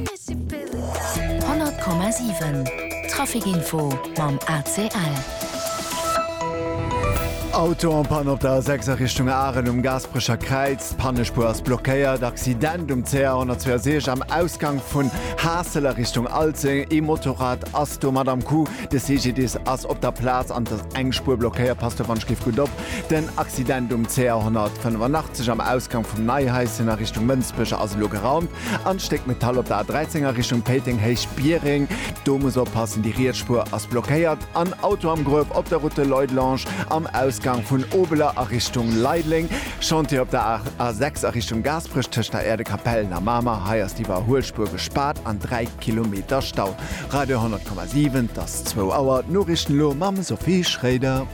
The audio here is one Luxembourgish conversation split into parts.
100 Komma 7 Trafikinfo mam ACL. Auto en panne op der A6 a Richtung Aaren um Gaasperecher Kräiz. D'Pannespuer ass blockéiert. Accident um CR 162 am Ausgank vun Haassel a Richtung Alzeng. Ee Motorrad ass domat am Coup. De CGDIS ass op der Plaz an et ass eng Spuer blockéiert. Passt dowannst giff gutt op. Den Accident um CR 185 am Ausgank vum Neihaischen a Richtung Mënsbech ass elo geraumt. An d'Stéck Metall op der A13 a Richtung Péiteng Héich Biereng. Do muss oppassen, déi riets Spuer ass blockéiert. An Auto am Gruef op der Route de Leudelange am Ausgang vun Obeler a Richtung Leideleng. Chantier op der A6 a Richtung Gaasperech tëscht der Äerdekapellen a Mamer. Hei ass d'Iwwerhuelspuer gespaart an 3 Kilometer Stau. Radio 10,7 't ass zwou Auer, d'Noriichten elo mam Sophie Schroeder.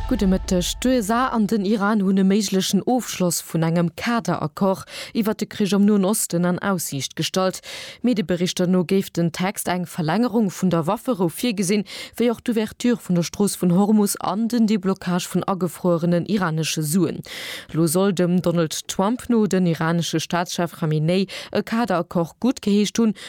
Gudde Mëtteg. D'USA an den Iran hunn e méiglechen Ofschloss vun engem Kader-Accord iwwert de Krich am Noen Osten an Aussiicht gestallt. Medieberichter no géif den Text eng Verlängerung vun der Wafferou virgesinn, wéi och d'Ouverture vun der Strooss vun Hormus an den Deblockage vun agefruerenen iranesche Suen. Elo soll dem Donald Trump no den iranesche Staatschef Khamenei e Kader-Accord guttgeheescht hunn,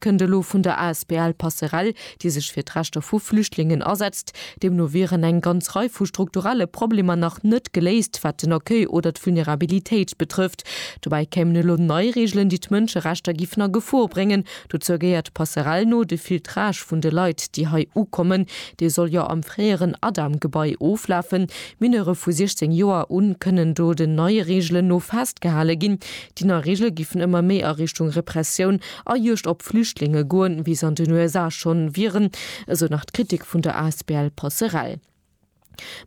kënnt elo vun der asbl Passerell, déi sech fir d'Rechter vu Flüchtlingen asetzt. Deemno wieren eng ganz Rei vu strukturelle Problemer nach net geléist, wat den Accueil oder d'Vulnerabilitéit betrëfft. Dobäi kéimen elo nei Reegelen, déi d'Mënscherechter géifen a Gefor bréngen. Dozou gehéiert de Passerell no de Filtrage vun de Leit, déi hei ukommen. Dee soll jo am fréieren Adam-Gebai oflafen. Mineure vu 16 Joer un kënnen do den neie Reegelen no festgehale ginn. Déi nei Reegele géifen ëmmer méi a Richtung Repressioun, a Juegd op Flüchtlinge goen, wéi se an den USA schonn wieren, esou nach d'Kritik vun der asbl Passerell.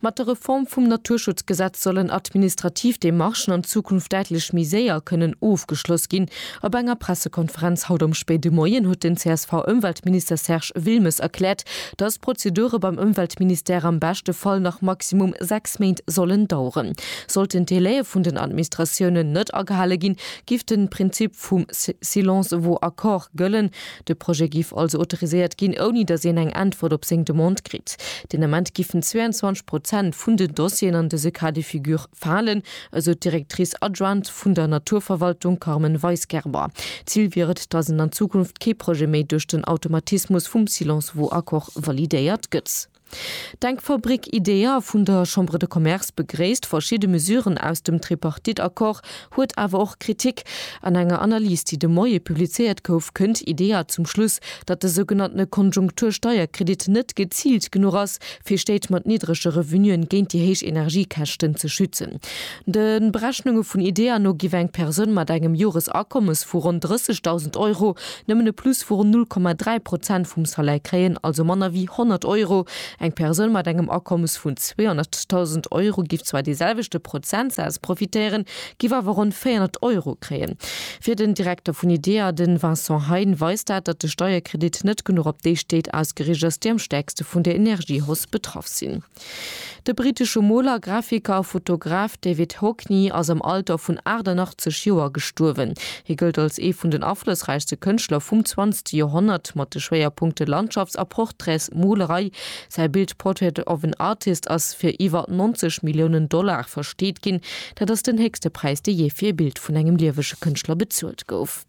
Mat der Reform vum Naturschutzgesetz sollen administrativ Demarchen an Zukunft däitlech méi séier kënnen ofgeschloss ginn. Op enger Pressekonferenz haut am spéide Moien huet den CSV-Ëmweltminister Serge Wilmes erkläert, datt d'Prozedure beim Ëmweltministère am beschte Fall nach maximum sechs Méint sollen daueren. Sollten d'Delaie vun den Administratiounen net agehale ginn, Giff den Prinzip vum silence vaut accord gëllen. De Projet giff also autoriséiert ginn, ouni dass een eng Äntwert op seng Demande kritt. Den Ament giffen 22 Prozent vun den Dossieren an dëse Cas de figure falen, esou d'Directrice adjointe vun der Naturverwaltung Carmen Weisgerber. Zil wier et, dass en an Zukunft kee Projet méi duerch den Automatismus vum silence vaut accord validéiert gëtt. D'Denkfabrik IDEA vun der Chambre de Commerce begréisst verschidde Mesuren aus dem Tripartite-Accord, huet awer och Kritik. An enger Analys, déi de Moie publizéiert gouf, kënnt IDEA zum Schluss, datt de sougenanntene Konjunktur-Steierkredit net geziilt genuch ass, fir Stéit mat niddrege Revenuen géint déi héich Energiekäschten ze schützen. De Berechnunge vun IDEA no giff eng Persoun mat engem Joresakommes vu ronn 30.000 Euro nëmmen e Plus vu ronn 0,3 Prozent vum Salaire kréien, also manner wéi 100 Euro. Eng Persoun mat engem Akommes vun 200.000 Euro giff zwar dee selwechte Prozentsaz profitéieren, giff awer ronn 400 Euro kréien. Fir den Direkter vun IDEA, de Vincent Hein, weist dat, datt de Steierkredit net genuch op déi Stéit ausgeriicht ass, déi am stäerkste vun der Energiehausse betraff sinn. De brittesche Moler, Grafiker a Fotograf David Hockney ass am Alter vun 88 Joer gestuerwen. Hie gëllt als ee vun den aflossräichste Kënschtler vum zwanzegste Joerhonnert, mat de Schwéierpunkte Landschafts a Portraitsmolerei. Säi Bild Portrait of an Artist ass fir iwwer 90 Milliounen Dollar versteet ginn. Dat ass den héchste Präis, dee jee fir ee Bild vun engem liewege Kënschtler bezuelt gouf.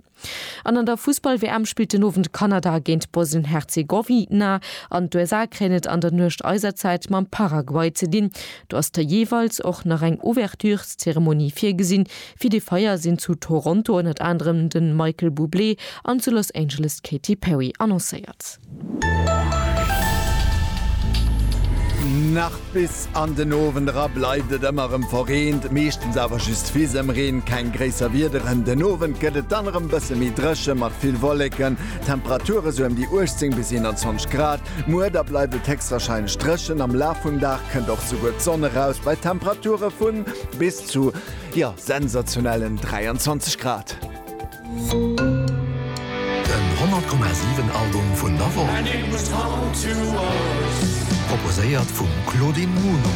An an der Fussball-WM spillt den Owend Kanada géint Bosnien-Herzegowina an d'USA kréien et an der Nuecht eiser Zäit mam Paraguay ze dinn. Do ass der jeeweils och nach eng Ouvertureszeremonie virgesinn. Fir dee Feier sinn zu Toronto ënnert anerem de Michael Bublé an zu Los Angeles d'Katy Perry annoncéiert. Nach bis an den Owend era bleift et ëmmer erëm verreent, meeschtens awer just Fisemreen, keng gréisser Wiederen. Den Owend gëtt et dann erëm bësse méi dréche mat vill Wolleken, Temperature sou ëm déi 18 bis 21 Grad. Muer da bleift et héchstwarscheinlech dréchen, am Laf vum Dag kënnt och souguer d'Sonn eraus bei Temperature vu bis zu, jo, sensationellen 23 Grad. Den 100,7 Album vun der Woch. Proposéiert vum Claudine Muno.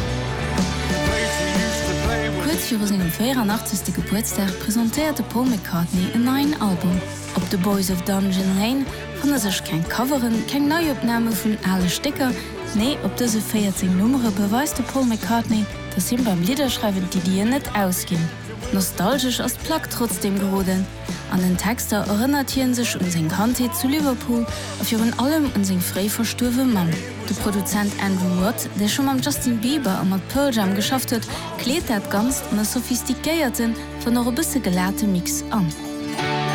Kuerz viru sengem 84. Gebuertsdag presentéiert de Paul McCartney en neien Album. Op The Boys of Dungeon Lane fanne sech keng Coveren, keng Neiopname vun ale Stécker. Nee, op dëse 14 Nummere beweist de Paul McCartney, dass him beim Lidderschreiwen d'Iddien net ausginn. Nostalgesch ass d'Plack trotzdeem geroden. An den Texter erënnert hien sech un seng Kandheet zu Liverpool a virun allem un seng fréi verstuerwe Mamm. De Produzent Andrew Watt, dee scho mam Justin Bieber a mat Pearl Jam geschafft huet, kleet dat Ganzt an e sophistiquéierten, wann och e bësse gelate Mix an.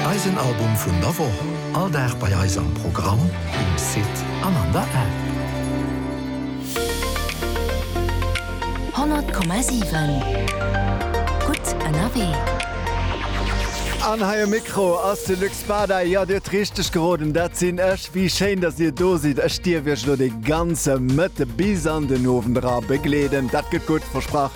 Eisen Album vun der Woch, all Dag bei eis am Programm, um Site an an der App. Honnert Komma siwen, gutt ënnerwee. An hei um Mikro ass de Luc Spada. Jo, dir hutt richteg geroden, dat sinn ech. Wéi schéin, dass dir do sidd. Ech dierf iech elo de ganze Mëtte bis an den Owend era begleeden. Dat gëtt gutt, versprach.